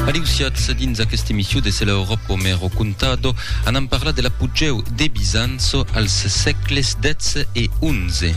Aliusiatz dins aquesta emission de Se la Europa me r'ho contado, anam parlar de l'apogèu de Bizanço als sègles xii e xi.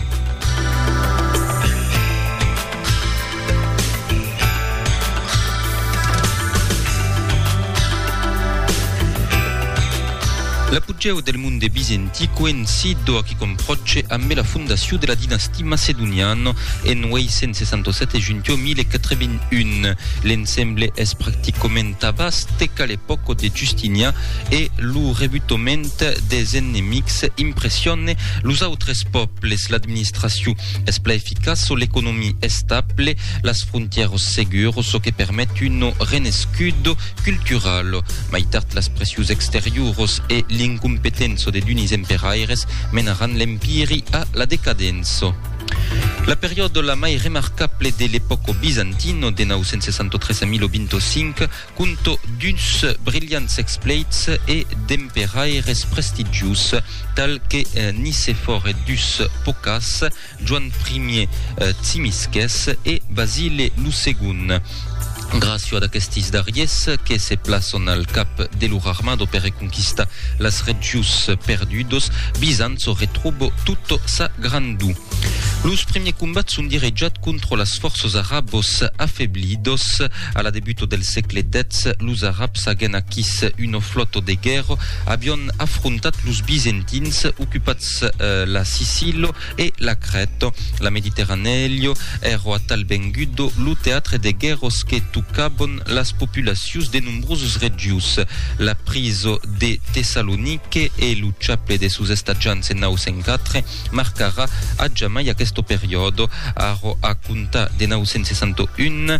L'apogèu del monde bizentic coïncid doaquí qu'on pròche ambe la fondacion de la dinastia. Parti Macedonian en 867 e Juntio 1081. L'ensemble es practicament tabàs teca l'epòca de Justinian e lo rebutament des enemics impressione los autres pòbles. L'administracion es pla eficaç, l'economia estable, las frontièros seguros, çò que permet un renescut cultural. Mai tard las pressius exteriuros e l'incompetenço de d'unis emperaires menaràn l'empiri a la decadenço. La periòda la mai remarcable de l'epòco bizantino de 963 a 1025 conto d'uns brilhants expleits e d'emperaires prestigius tal que Nicefòr e dus pocas Joan Primier Tsimisquès e Basile lo Segon. Gràcio ad aquestis darriers que se plaçon al cap de lor armado per reconquistar las regions perdudos, Bizanço retròbo tota sa grandor. Los primiers combats son direjats contra las fòrças arabos afeblidos. A la debuta del sègle X, los arabs agen aquís una flòta de guèrra, avián afrontat los bizentins, ocupats Latz, la Sicillo e la Crèto, la Mediterranèllo, èrò atal vengudo lo teatre de guèrros que tocabon las populacions de nombroses regions. La priso de Tessalonique e lo chaple de sos estatjants en 904 marcarà a jamai aqueste periòde. Arrò a comptar de 961,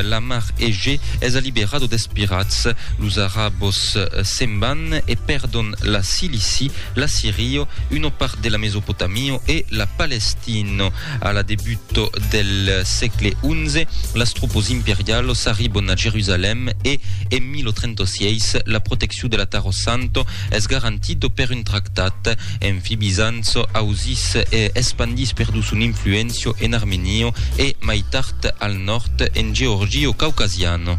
la mar Egè es alliberado des pirats, los arabos se'n van e pèrdon la Cilici, la Sirio, una part de la Mesopotamio e la Palestina. A la debut del sègle XI, las tropas imperialas arribon a Jerusalèm e, en 1036, la proteccion de la Taro Santa es garantida per un tractat. Enfi, Bizanç ausís e espandís perdu son influéncia en Armenia e, mai tard, al nòrd, en Georgia caucasiana.